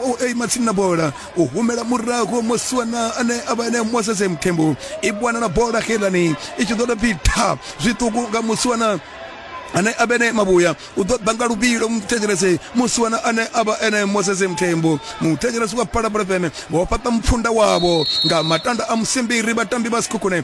u aima tsini na bola u humela murahu muswana ane a vha ene moses mthembu i bwana na bola xelani i tshi ḓo tou pfi tha zwiṱuku nga muswana ane a vhene mavhuya u ḓo ḓa nga luvhilo muthetshelese musi wana ane a vha ene moses mthembo muthetshelesi wa phalaphala fm vho fhaṱa mupfunda wavho nga matanda a musimbiri vhatambi vha sikhukhune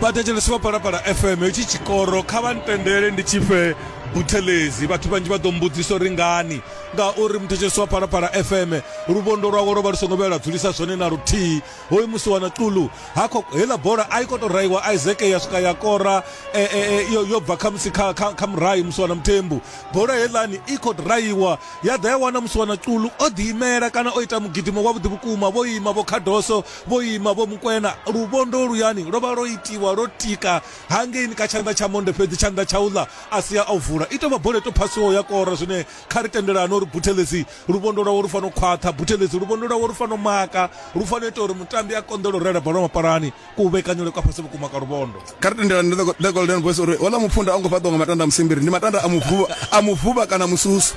vhathetshelesi vha palapala fm hetshi tshikoro kha vha ntendele ndi tshifhe buthelezi vhathu vhanzhi vha ḓo mbudzisa uri ngani ngauri muthetshelesi wa palapala fm luvhondo lwawe lwo vha lu songo vhela dzulisa zwone na luthihi hoyu musi wana tulu hakho heiḽa bola a i kho to raiwa isaac ya swika ya kora e, e, e, yo, yo bva khamusi kha, kha, kha murayi musi wana muthembu bola heiḽani i kho raiwa ya ḓa ya wana musi wana tulu o ḓiimela kana o ita mugidimo wavhuḓi vhukuma vho ima vho khadoso Vho ima vho mu kwena. Luvhondo luyani lwo vha lwo itiwa lwo tika hangeini kha tshanḓa tsha monde fhedzi tshanḓa tsha u ḽa a si a u vula. I tou vha boleto phasiwaho ya kora zwine kha ri tendelane uri Buthelezi luvhondo lwawe lu fanela u khwaṱha, Buthelezi luvhondo lwawe lu fanela u maka, lu fanela u ita uri mutambi a konḓelwe u rela bola mapalani. Kuvhekanyelwe kwa fhasi vhukuma kwa luvhondo. kha ri tendelani ndi the, the golden voice uri ola mupfunda a ngo fhaṱiwa nga matanda a musimbiri ndi matanda a muvhuva a muvhuva kana mususu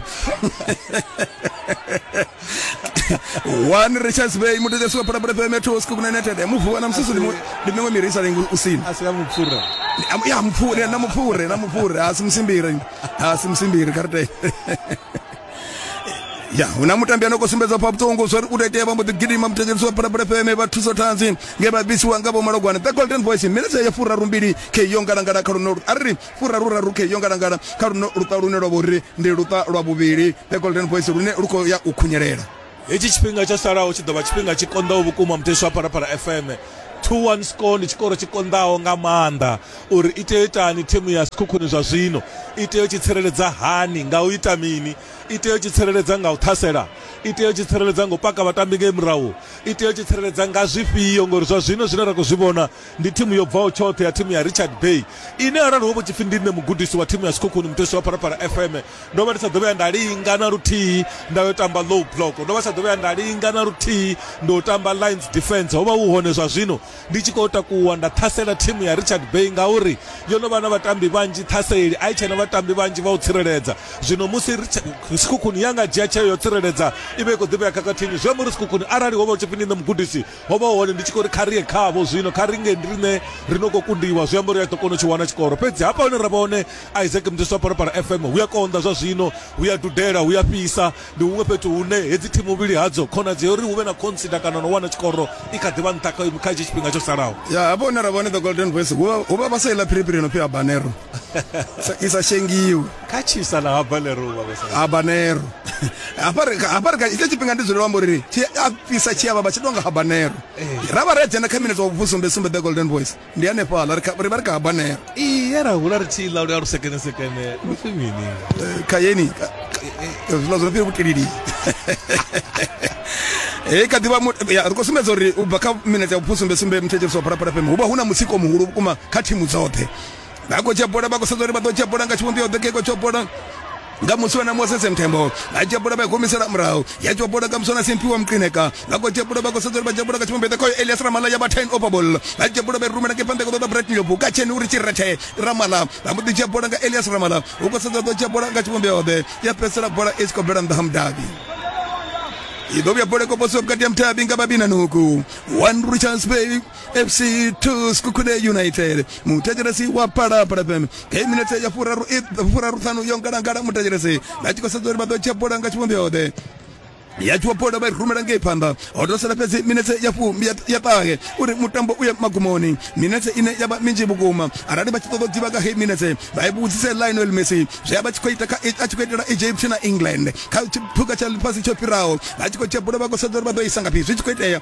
one richards bay mudedesi wa phalaphala fm ya two scoop united muvhuva na mususu ndi mu- ndi miṅwe miri i sa lengi u sina asi ya mupfura Am- ya mupfure na mupfure na mupfure asi musimbiri asi musimbiri kha ri tende ya hu na mutambi ano khou sumbedza pha vhuṱungu zwo ri u tou vha mbo ḓi gidima muthetshelisi wa phalaphala fm vha thuso tanzi nge vha bvisiwa nga vhomalogwana the golden voice minetse ya furaru mbili khe yo ngalangala kha luno a ri furaru raru khe yo ngalangala kha luno luṱa lune lwa vho ri ndi luṱa lwa vhuvhili the golden voice lune lu khou ya u khunyelela hetshi tshifhinga tsho salaho tshi ḓo vha tshifhinga tshi konḓaho vhukuma muthetsho wa phalaphala fm 2-1 score ndi tshikoro tshi konḓaho nga maanḓa uri i tea u itani thimu ya sikhukhuni zwa zwino i tea u tshi tsireledza hani nga u ita mini i tea u tshi tsireledza nga u ṱhasela i tea u tshi tsireledza nga u paka vhatambi ngei murahu i tea u tshi tsireledza nga zwifhio ngori zwa zwino zwine ra khou zwi vhona ndi thimu yo bvaho tshoṱhe ya thimu ya richard bay ine arali ho vho tshipfi ndi nṋe mugudisi wa thimu ya sikhukhuni muthetsho wa phalaphala fm ndo vha ndi sa ḓo vhuya nda linga na luthihi nda yo tamba low block ndo vha sa ḓo vhuya nda linga na luthihi ndo tamba lines defense ho vha hu hone zwa zwino ndi tshi khou takuwa nda ṱhasela thimu ya richard bay ngauri yo no vha na vhatambi vhanzhi ṱhaseli a i tshena vhatambi vhanzhi vha u tsireledza zwino musi sikhukhuni ya nga dzhia tsheo yo tsireledza i vha i khou ḓivhea khakhathini zwi amba uri sikhukhuni arali ho vha u tshipfi ndi nṋe mugudisi ho vha hone ndi tshi khou ri kha ri ye khavho zwino kha ri nge ndi rine ri no khou kundiwa zwi amba uri a ḓo kona u tshi wana tshikoro fhedzi hafha hune ra vha hone isaac mudisi wa parapara fm hu a konḓa zwa zwino hu ya dudela hu ya fhisa ndi huṅwe fhethu hune hedzi thimu vhili hadzo khonadzeo uri hu vhe na khonsida kana no wana tshikoro i kha ḓivha nṱha kha hetshi tshifhinga tsho salaho ya hafha hune ra vha hone the golden voice hu vha vha sa iḽa phiriphiri no pfi habanero i sa shengiwi kha tshisa na habanero habanero habarika itsho tshifhinga ndi dzulelo amba uri tshi a fhisa tshi avha vha tshi tonga habanero eh. ra vha ri a dzhena kha minete wa vhusumbe sumbe the golden voice ndi hanefhaḽa ri vha ri kha habanero iye ra hula ri tshi ḽa lu ya lu sekene sekene lu pfi mini eh, kha yeni zwiḽa zwo no fhiri vhutilili he eh, kha ḓivha ri khou sumbedza uri u bva kha minete ya vhusumbe sumbe muthetsheliso wa phalaphala fm hu vha hu na mutsiko muhulu vhukuma kha thimu dzoṱhe vha khou dzhia bola vha khou sedza uri vha ḓo dzhia bola nga tshivhumbeo ḓe keko tsho bola nga muswa na moses mthembo a dzhia bola vha humisela murahu ya dzhia bola nga muswa na simpiwa mqineka vha khou dzhia bola vha khou sedza uri vha dzhia bola nga tshivhumbeo ḓe khoyo elias ramala ya vha ten over ball vha dzhia bola vha rumela ke phanḓa koḓa brat nyobo ka tsheni uri tshirethe ramala vha mbo ḓi dzhia bola nga elias ramala u khou sedza ḓo dzhia bola nga tshivhumbeo ḓe ya fhedzisela bola i si khou bvela nnḓa ha mudabi i ḓo vhuya bola i khou posiwa vhukati ha mudabi nga vhabina nuku one richards bay fc 2 skukude united mutecheresi wa palapala fm kei minete ya furaru furaru thanu yo ngalangala mutecheresi na chikosedzo uri vado chabola nga chivhumbeo de yachiwapoda vha rumela ngei phanḓa ho tou sala fhedzi minetse ya fumi ya ṱahe uri mutambo u ye magumoni minetse ine ya vha minzhi vhukuma arali vha tshi ṱoḓa u ḓivha nga hei minetse vha i vhudzise lionel messi zwi a vha tshi khou ita a tshi khou itela egypt na england kha tshiphuga tsha ḽifhasi tsho fhiraho vha tshi khou tshebula vha khou sedza uri vha ḓo isa ngafhi zwi tshi khou itea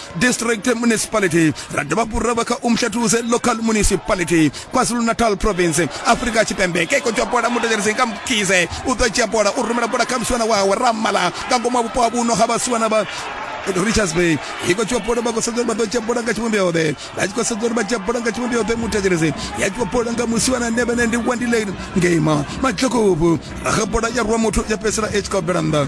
district municipality ra dovha fhuri ra vha kha umhlatuse local municipality kwazulu-natal province afrika tshipembe ke iko bola mutetsheleseng ka mkize u ḓo dzhia bola u rumela bola kha musiwana wawe ramala nga ngomu ha vhupo ha vhuno ha vhasiwana vha richards bay iko tshiwa bola vha khou sedza uri vha ḓo dzhia bola nga tshivhumbeo ḓe vha tshi khou sedza uri vha dzhia bola nga tshivhumbeo ḓe mutetshelese ya tshiwa bola nga musiwana ne vhene ndi wandile ngema matlokovu raga bola ya rwa muthu ya fhedzisela i tshi khou bvela nnḓa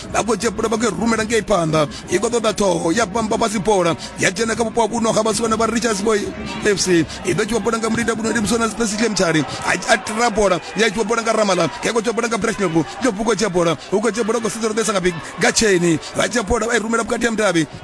vha khou dzhia bola vha khou i rumela ngei phanḓa i khou ṱoḓa ṱhoho ya bamba fhasi bola ya dzhena kha vhupo ha vhuno ha vhasiwana vha richards boy fc i ḓo tshiwa bola nga mulinda kuno ndi musona spesihle mtshali a tira bola ya tshiwa bola nga ramala ya khou tshiwa bola nga breshnoku yo vhuko dzhia bola u khou dzhia bola u khou sedza ro ḓesa nga big nga cheni vha dzhia bola vha i rumela vhukati ha mudavhi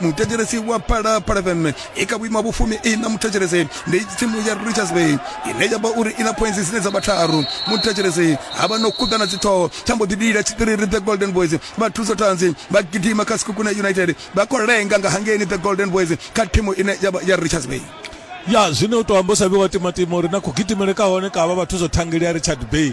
muthetshelesi wa phalaphala fm i kha vhuima vhufumi i na muthetshelesi ndi tsimu ya richards bay ine ya vha uri i na points dzine dza vha tharu muthetshelesi ha vha no khuḓana dziṱhoho tsha mbo ḓi lila tshiṱiriri the golden boys vha thuso tanzi vha gidima kha sikukuna united vha khou lenga nga hangeni the golden boys kha thimu ine ya vha ya richards bay ya zwine u to amba u sa vhi wa timatima uri na kugidimele ka hone ka vha vhathu zwo thangeli ya richard bay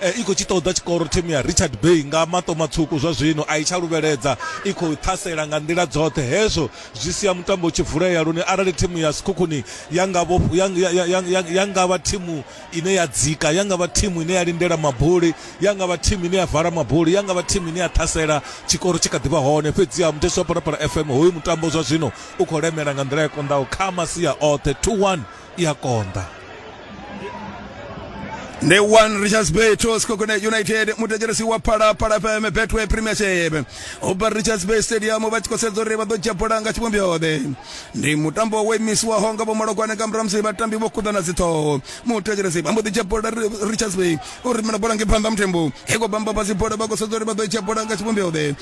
I khou tshi ṱoḓa tshikoro thimu ya Richard Bay nga maṱo matswuku zwa zwino a i tsha luvheledza, i khou ṱhasela nga nḓila dzoṱhe. Hezwo zwi sia mutambo u tshi vulea lune arali thimu ya Sekhukhuni ya nga vho ya ya ya ya ya nga vha thimu ine ya dzika, ya nga vha thimu ine ya lindela mabuli, ya nga vha thimu ine ya vala mabuli, ya nga vha thimu ine ya ṱhasela, tshikoro tshi kha ḓi vha hone. Fhedziha muthetsheli wa Phalaphala FM, hoyu mutambo zwa zwino u khou lemela nga nḓila i konḓaho kha masia oṱhe. 2-1. i a konḓa ndi one richards bay to skokone united mutekeresi wa phalaphala fm betway premiership ubva richards bay stadium vha tshi khou sedza uri vha ḓo dzhia bola nga tshivhumbiode ndi mutambo wo imisiwaho nga vhomalokwane nga murahu musi vhatambi vho kuḓana dziṱhoho mutekeresi vha mbo ḓi dzhia bola richards bay u rumela bola nge phanḓa muthembo i khou bamba fhasi bola vha khou sedza uri vha ḓo dzhia bola nga tshivhumbiode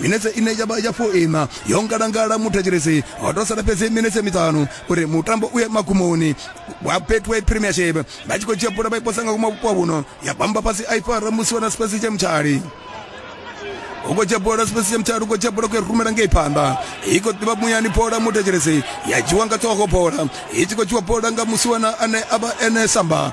minetse ine ya vha ya foina yo ngalangala muthetshelesi ho to sala fhedzi minetse miṱanu uri mutambo u ye magumoni wa betway premiership vha tshi khou dzhia bola vha i posa nga kuma vhupo vhuno ya bamba fhasi a i fara musi wana sipasi tsha mutshali ukotsha bola sipesi mthathu ukotsha bola kuyarumela ngei phanḓa iko ḓivha muyani bola muthetshelesi ya dzhiwa nga ṱhogo bola i tshi khou dzhiwa bola nga musiwana ane a vha ene samba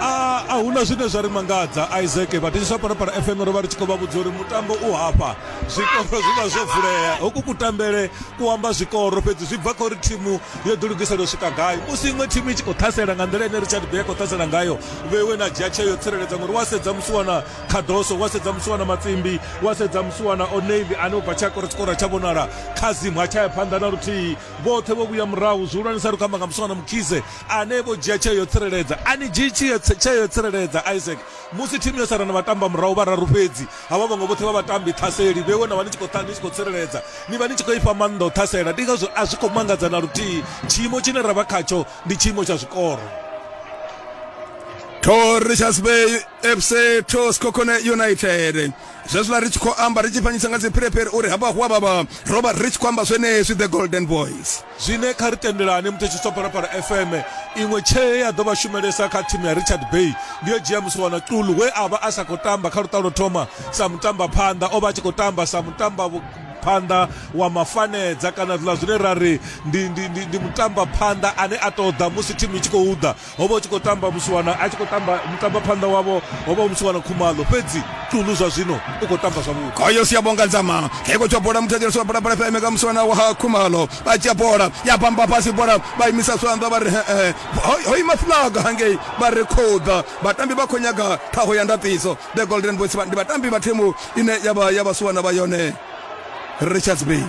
a a huna zwine zwa ri mangadza isaac vhathetshiswa parapara fm ro vha ri tshi khou vha vhudza uri mutambo u hafha zwikoro zwi vha zwo vulea hoku kutambele ku amba zwikoro fhedzi zwi bva kha uri thimu yo ḓilugisela u swika gai musi iṅwe thimu i tshi khou ṱhasela nga nḓila ine richard bay a khou ṱhasela ngayo vheiwe na dzhia tsheo yo tsireledza ngori wa sedza musi wana khadoso wa sedza musi wana matsimbi wa sedza musi wana oneivi ane u bva tsha kora tshikoro tsha vhonala kha zimu ha tsha ya phanḓa na luthihi vhoṱhe vho vhuya murahu zwihulwanesa ri khou amba nga musi wana mukhize ane vho dzhia tsheo yo tsireledza a ni dzhii tsheo yo tsireledza isaac musi thimu yo sala na vhatamba murahu vhararu fhedzi havha vhaṅwe vhoṱhe vha vhatambi ṱhaseli vhewe na vha ni tshi khou ni tshi khou tsireledza ni vha ni tshi khou ifha maanḓa u ṱhasela ndi ngazwo a zwi khou mangadza na luthihi tshiimo tshine ra vha khatsho ndi tshiimo tsha zwikoro to richards bay fc to skokone united zwezwiḽa ri tshi khou amba ri tshi fanyisa nga dziphirephire uri hafha hu a vhavha ro vha ri tshi khou amba zwenezwi the golden boys Zwine kha ri tendelane muthetshiswa Phalaphala FM iṅwe tshee ya ḓo vha shumelesa kha thimu ya Richard Bay ndi yo dzhia Musiwana Xulu we a vha a sa khou tamba kha luṱa lwo thoma sa mutambaphanḓa, o vha a tshi khou tamba sa mutambaphanḓa wa mafanedza kana zwiḽa zwine ra ri ndi ndi ndi ndi mutambaphanḓa ane a tou ḓa musi thimu i tshi khou ḓa. ho vha hu tshi khou tamba musiwana a tshi khou tamba mutamba phanḓa wavho ho vha hu musiwana khumalo fhedzi tulu zwa zwino u khou tamba zwavhuḓi koyo si ya bonga nzama keko tsho bola muthetshelesi wa bola bola fm ka musiwana wa khumalo vha dzhia bola ya bamba fhasi bola vha imisa swanḓa vha ri hee ho ima fulaga hangei vha ri khoḓa vhatambi vha khou nyaga ṱhaho ya ndaṱiso the golden boys ndi vhatambi vha thimu ine ya vha ya vhasiwana vha yone richards bay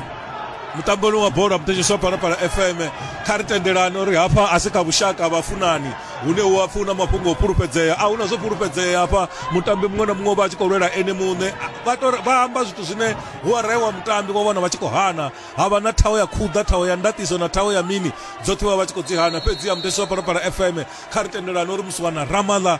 mutamboni wa bola mutetshiswa phalaphala fm kha ri tendelani uri hafha a si kha vhushaka vhafunani hune hu a funa mafhungo o fhulufhedzea a huna zwo fhulufhedzea hafha mutambi muṅwe na muṅwe vha tshi khou lwela ene muṋe vha amba zwithu zwine hu araiwa mutambi wa vhona vha tshi khou hana ha vha na thaho ya khuḓa thaho ya ndatiso na thaho ya mini dzoṱhe vha vha tshi khou dzi hana fhedzi ya mutetshiswa phalaphala fm kha ri tendelani uri musiwana ramaḽa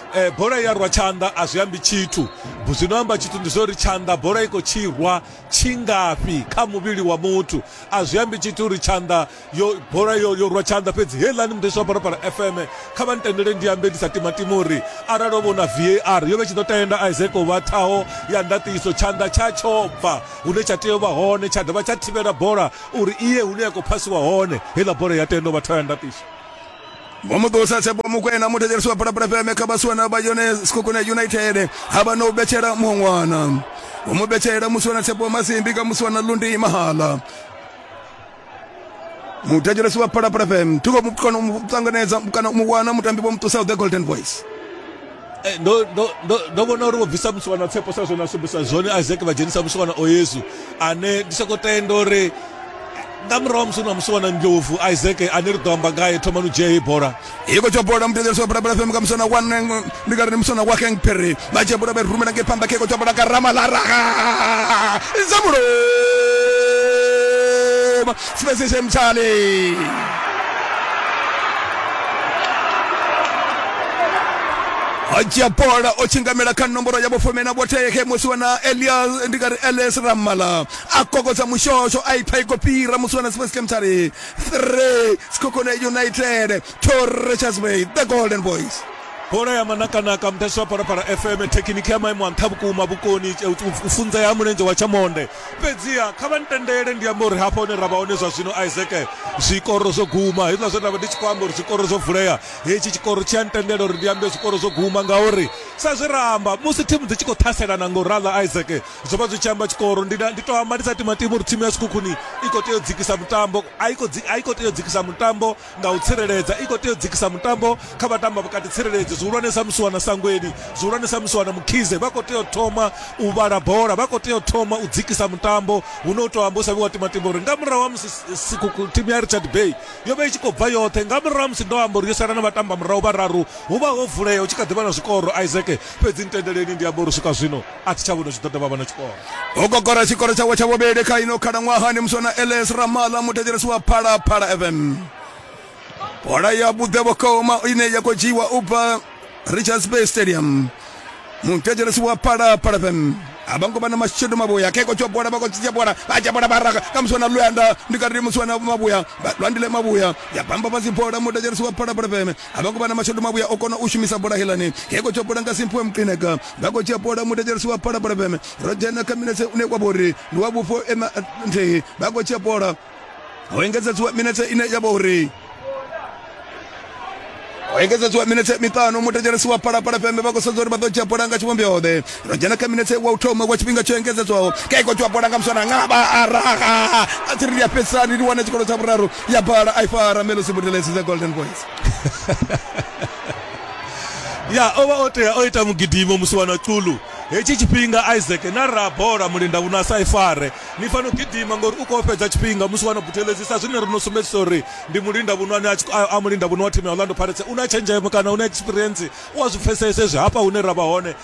Eh, bola i ya rwa tshanḓa a zwi ambi tshithu zwi no amba tshithu ndi zwa uri tshanḓa bola i khou tshi rwa tshingafhi kha muvhili wa muthu a zwi ambi tshithu uri tshanḓa yo bola yo yo rwa tshanḓa fhedzi heiḽani mudesi wa phalaphala fm kha vha ntendele ndi ambe ndi sa timatima uri arali o vhona var yo vhe tshi ḓo tenda isaac u vha ṱhaho ya ndaṱiso tshanḓa tsha tsho bva hune tsha tea u vha hone tsha dovha tsha thivhela bola uri iye hune ya khou phasiwa hone heiḽa bola ya tenda u vha ṱhaho ya ndaṱiso Vho Muṱusa Tshepo Mukwena muthetshelesi wa Phalaphala FM kha vhasiwana vha yone Sekhukhune United ha vha no betshela muṅwana vho mu betshela musiwana Tshepo Masimbi kha musiwana Lundi Mahala muthetshelesi wa Phalaphala FM thi khou mu kona u mu ṱanganedza kana u mu wana mutambi vho Muṱusa the Golden Voice Eh, ndo ndo ndo ndo vhona uri vho bvisa musiwana tsepo sa zwone a sumbisa zwone isaac vha dzhenisa musiwana o yesu ane ndi soko tenda uri nga murahu musi na musiwana ndlovu isaac ane ri ḓo amba ngaye thomani u dzhia heyi bola iko tsho bola mudedzeso parabala fm ka musana wa neng ndi ka ri musana wa keng pere ba tshe bola ba rumela ke pamba ke ko tsho bola ka rama la raga zamulo Sibenzise Mtshali Haji Apola o tshingamela kha nomboro ya vhufumi na vhothekhe musi wana Elias ndi nga ri Elias Ramala a kokodza mushosho a ipha iko fhira musi wana Space Kemtari 3 Skokone United to Richards Bay the Golden Boys bola ya manakanaka mudasi wa parapara fm thekiniki ya maimo a nṱha vhukuma vhukoni u funza ya mulenzhe wa tshamonde fhedziha kha vha ntendele ndi amba uri hafha hune ra vha hone zwa zwino isaac zwikoro zwo guma hezwiḽa zwe nda vha ndi tshi khou amba uri zwikoro zwo vulea hetshi tshikoro tshi a ntendela uri ndi ambe zwikoro zwo guma ngauri sa zwe ra amba musi thimu dzi tshi khou ṱhaselana nga u raḽa isaac zwo vha zwi tshi amba tshikoro ndi na- ndi tou amba ndi sa timatima uri thimu ya sikhukhuni i khou tea u dzikisa mutambo a i khou dzi- a i khou tea u dzikisa mutambo nga u tsireledza i khou tea u dzikisa mutambo kha vhatamba vhukati tsireledzi zwihulwane sa musi wana sangweni zwihulwane sa musi wana mukhize vha khou tea u thoma u vhala bola vha khou tea u thoma u dzikisa mutambo hu no u tou amba u sa vhi wa timatima uri nga murahu ha musi thimu ya richard bay yo vha i tshi khou bva yoṱhe nga murahu ha musi ndo amba uri yo sala na vhatamba murahu vhararu hu vha ho vulea hu tshi kha ḓi vha na zwikoro isaac fhedzi ntendeleni ndi amba uri swika zwino a thi tsha vhona zwi ṱoḓa vha vha na tshikolo ho gogora tshikolo tshawe tsha vhuvhili kha ino khalaṅwahani musi ona ls ramala muthetshelesi wa phalaphala fm bola ya vhuḓe vhukuma ine ya khou dzhiiwa u bva richards bay stadium muthetshelesi wa phalaphala fm a vha ngo vha na mashedu mavhuya khe kotshiwa bola vha kotshiwa bola vha dzhia bola vha raga ka musi wana luyanda ndi kati musi wana mavhuya lwandile mavhuya ya bamba fhasi bola muthetshelesi wa phalaphala fm a vha khou vha na mashodu mavhuya o kona u shumisa bola helani he khou tsha bola nga simphiwe muqineka vha khou tshia bola mutetshelisi wa phala bola feme ro dzhena kha minetse une wa vhori ndi wa vhufho ema nthihi vha khou tshia bola ho engedzedziwa minetse ine ya vha uri engedzedziwa minetse miṱanu mutetshelesi wa phalaphala feme vha khou sedza uri vha ḓo dzhia bola nga tshivhombeoḓe ro dzhena kha minetse wa u thoma wa tshifhinga tsho engedzedzwaho kha iko tshiwa bola nga muswana ngaba araha a tsiri ndi a fhedzisani ndi wane tshikolo tsha vhuraru ya bala a i fara melosi budelesi dza golden boys ya o vha o tea o ita mugidimo musi wa na culu hetshi tshifhinga isaac na ra bola mulinda vhuno a sa i fare ni fano gidima ngori u khou fhedza tshifhinga musi wa na butelezi sa zwine ri no sumbedzisa uri ndi mulinda vhuno ane a mulinda vhuno wa thimu ya orlando pirates u na tshenzhemo kana u na experience u a zwi pfhesese zwi hafha hune ra vha hone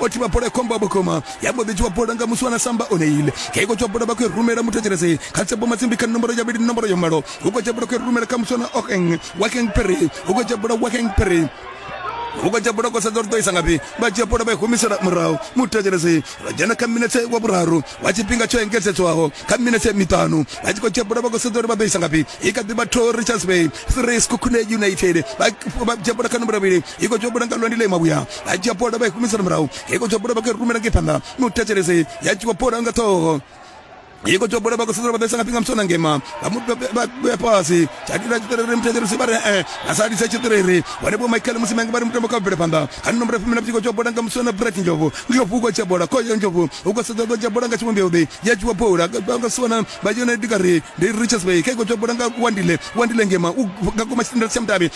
o thivha bola ya khombo vhukuma ya mbo ḓi dzhiwa bola nga musi wana samba o neile kha iko dzhiwa bola vha khou rumela muthetshelesi kha tsepo matsimbi kha nomboro ya vhili nomboro ya malo hu khou dzhiwa bola khou rumela kha musi wana okeng wakeng pere hu khou dzhiwa bola wakeng pere ukatya bola kwa sadza rutoisa ngapi vatya bola va humisela murahu mutacelesi va jana ka minetse wa vuraru wa cipinga co engesetswaho ka minetse mitanu va ci kotya bola va kosadza ri va toisa ngapi i ka diva to richards bay three skukune united va jya bola ka nomboro vili iko tsho buda nga lwandi ḽa ima vhuya a dzhia bola vha i humisela murahu iko tsho buda vha khou rumela ngei phanḓa mi u thetshelese ya dzhiwa bola nga ṱhoho yiko tsho bola vha khou sedzela vha ḓesa nga phinga musona ngema vha mu vhea fhasi tsha dira tshiṱiriri muthetshelesi vha ri e a sa lisa tshiṱiriri vhone vho michael musi mange vha ri mutambo kha bvele phanḓa kha ni nomboro fumi na vhutshiko tsho bola nga musona bret njovu njovu u khou tsha bola khoyo njovu u khou sedza ḓo dzhia bola nga tshivhumbeo ḓi ya dzhiwa bola vha nga sona vha dzhena dikari ndi richards bay kha iko tsho bola nga wandile wandile ngema u nga koma tshitendere tsha mutavhi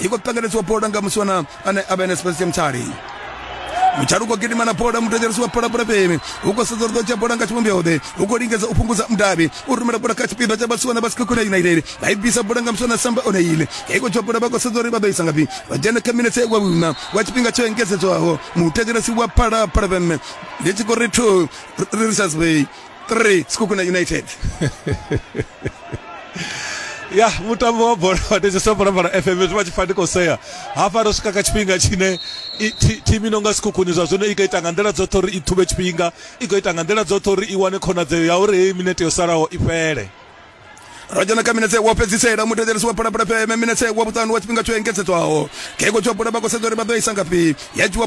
i khou pengeledziwa bola nga musiwana ane a vha ene spensia mutshali mutshali u khou gidima na bola muthetshelesi wa bola pulapemi u khou sedza uri ḓo dzhia bola nga tshivhumbyoḓe u khou lingedza u fhungudza mudavhi u rumela bola kha tshipiḓa tsha vhasiwana vha sikhakhona united vha i bvisa bola nga musiwana samba o neile i khou dzhia bola vha khou sedza uri vha ḓo isa ngafhi vha dzhena kha minetse wa vhuna wa tshifhinga tsho engedzedzwaho muthetshelesi wa phala pulapemme ndi tshi khou ri two richards bay 3 Sekhukhune United. ya mutambo wa bola wa tete sa bola FM zwi vha tshi fani khou sea hafha ro swika kha tshifhinga tshine i- thi- thimu ino nga sikhukhuni zwa zwino i khou ita nga nḓila dzoṱhe uri i ṱhuvhe tshifhinga i khou ita nga nḓila dzoṱhe uri i wane khonadzeo ya uri heyi minete yo salaho i fhele Ro dzhena kha minetse wa fhedzisela mutevhelesi wa Phalaphala FM minetse wa vhuṱanu wa tshifhinga tsho engedzedzwaho. Khe khotsi wa bola vha khou sedza uri vha ḓo isa ngafhi. Ya dzhiwa